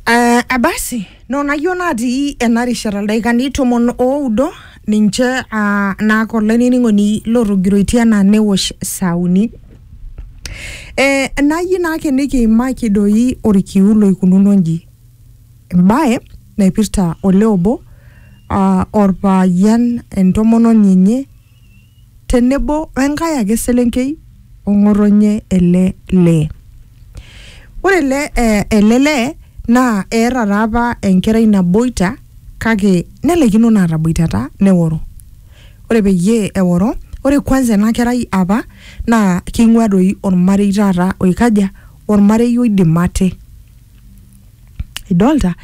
Uh, abasi nonayieu natii ena rishata ildaikani tomon oudo ninche uh, naake olainining'oni lotogiroitie enaa newosh saa uni eh, nayieu naake nikiimaki doi orkiu loikununo nji embaye naipirta olee obo uh, orpayian entomononi enye tenebo we nkae ake selenkei o ng'otonye ele lee. Ore ele eh, ele lee naa eeta taa apa enkerai naboita kake nelaikino naa ataboitata neworo. Ore peyie eworo, ore kwanza ena kerai apa naa keing'uaa doi olmarei taata oikaja, olmarei oidim ate. idolta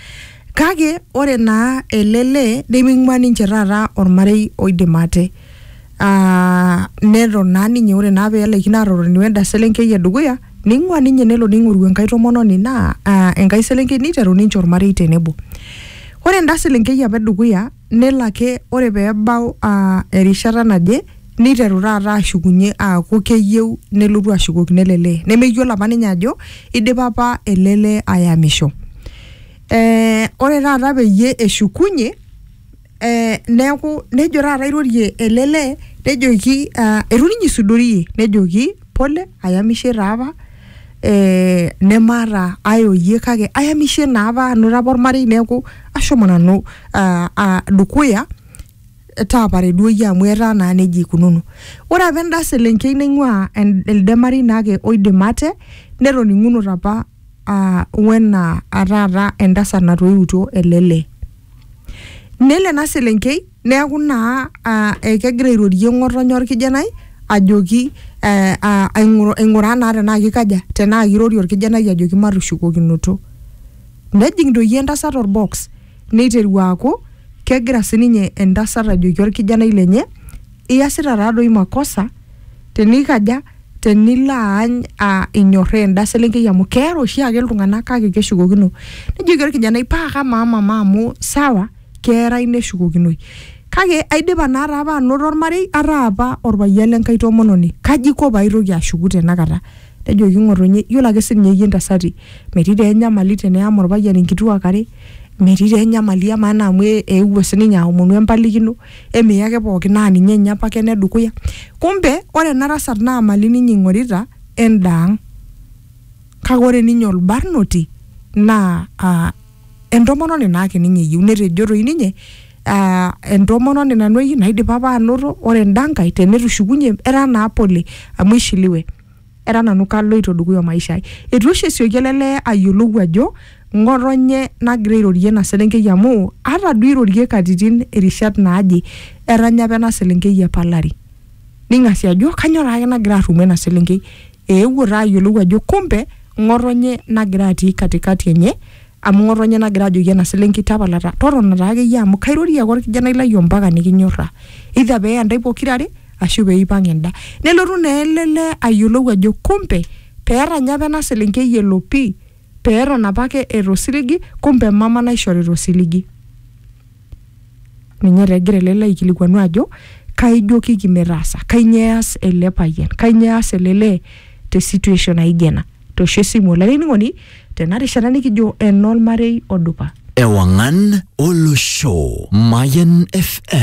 kake ore naa ele lee neming'ua ninche taata ormarei oidim ate Ah, neton naa ninye ore naa pelaikino atotoni wenda selenkei edukuya ning'ua ninye nelo ning'oru enkae tomononi naa ah, enkae selenkei niteru ninche ormarei tenebo ore enda selenkei apa edukuya nelo ake ore pee ebau aa erishata naje niteru taata ashukunye aaku keyieu nelotu ashukokino ele lee nemeyiolo apa ninye ajo idipa apa ele lee ayamisho ee ore taata peyie eshukunyie ee neeku nejo taata airorie ele lee nejoki aa itu ninye isudorie nejoki pole ayamishe taa apa. eh, nemaata ae oyie kake ayamishe naapa anoto apa ormarei neeku ashomo nanu ah, ah, dukuya taapare duo iyie amu etaa naa nejia ikununo ore apa enda selenkei naing'ua en- elde marei naake oidim ate netoning'unote apa ah, wena ah, taata entasat natoiutuo ele lee nelo ena selenkei Neaku naa ekegira airorie ng'otonye olkijanai ajoki aing'uraa naa tenaa keikaja, tenaa keirorie olkijanai ajoki matushukokinoto. Nejing doi entasat olbox neiteru aaku kegira sininye entasat ajoki olkijanai lenye iasita taa doi makosa tenikaja, tenilo aany inyorraa enda selenkei amu keara oshiake iltung'ana kake keshukokino. Nejoki olkijanai paa kamaa mama amu sawa. keerai neshukokinoi. Kake aidipa naa taa apa anoto olmarei, ataa apa olpayian le nkai tomononi, kaji aiko pee aitoki ashuku tena kata? Nejoki ng'otonye, iyiolo ake sii ninye iyie intasati, metii taa enyamali teneyam olpayian inkituak are, metii taa enyamali amaa naa amu eewuo sii ninye aomonu empalikino, eme iyake pooki naa ninye ninye opake ene dukuya. Kumbe ore ena tasat naa imali ninye eing'orita endaang'. Kake ore ninye olbarnoti naa aa. entomononi naake ninye eyieu netejo toi ninye ah, entomononi nanu eyieu naidipa apa anoto ore enda nkae tenetushukunye etaa naa pole amu ishiliwe era nanu kaloito dukuya o maisha ai etu oshi esioki ele lee ayiolou ajo ng'otonye nagira airorie ena selenkei amu ata duo irorie katitin irishat naaje etanya apa ena selenkei epalari ning'asi ajo kanyoo taake nagira arrumoo ena selenkei eewuo taa ayiolou ajo kumbe ng'otonye nagira atii katikati enye amu ng'otonye nagira ajoki ena selenkei tapala ta- totona taa akeyie amu kairorie ake orkijanai lai ompaka nikinyorraa either pee eya ntae pokirare ashu peipang enda nelotu naa ele lee ayiolou ajo kumbe peeranya apa ena selenkei elo pii peeton apake eeta osiligi kumbe mama naishorita osiligi. Ninye taa egira ele lee aikilikuanu ajo kaijokiki metaasa, kainyoo eas ele payian, kainyoo eas ele lee te situation naijo ena. Toosho esimu olainining'oni tena rishata nikijo enormarei odupa. Ewang'an Olosho, Mayan FM.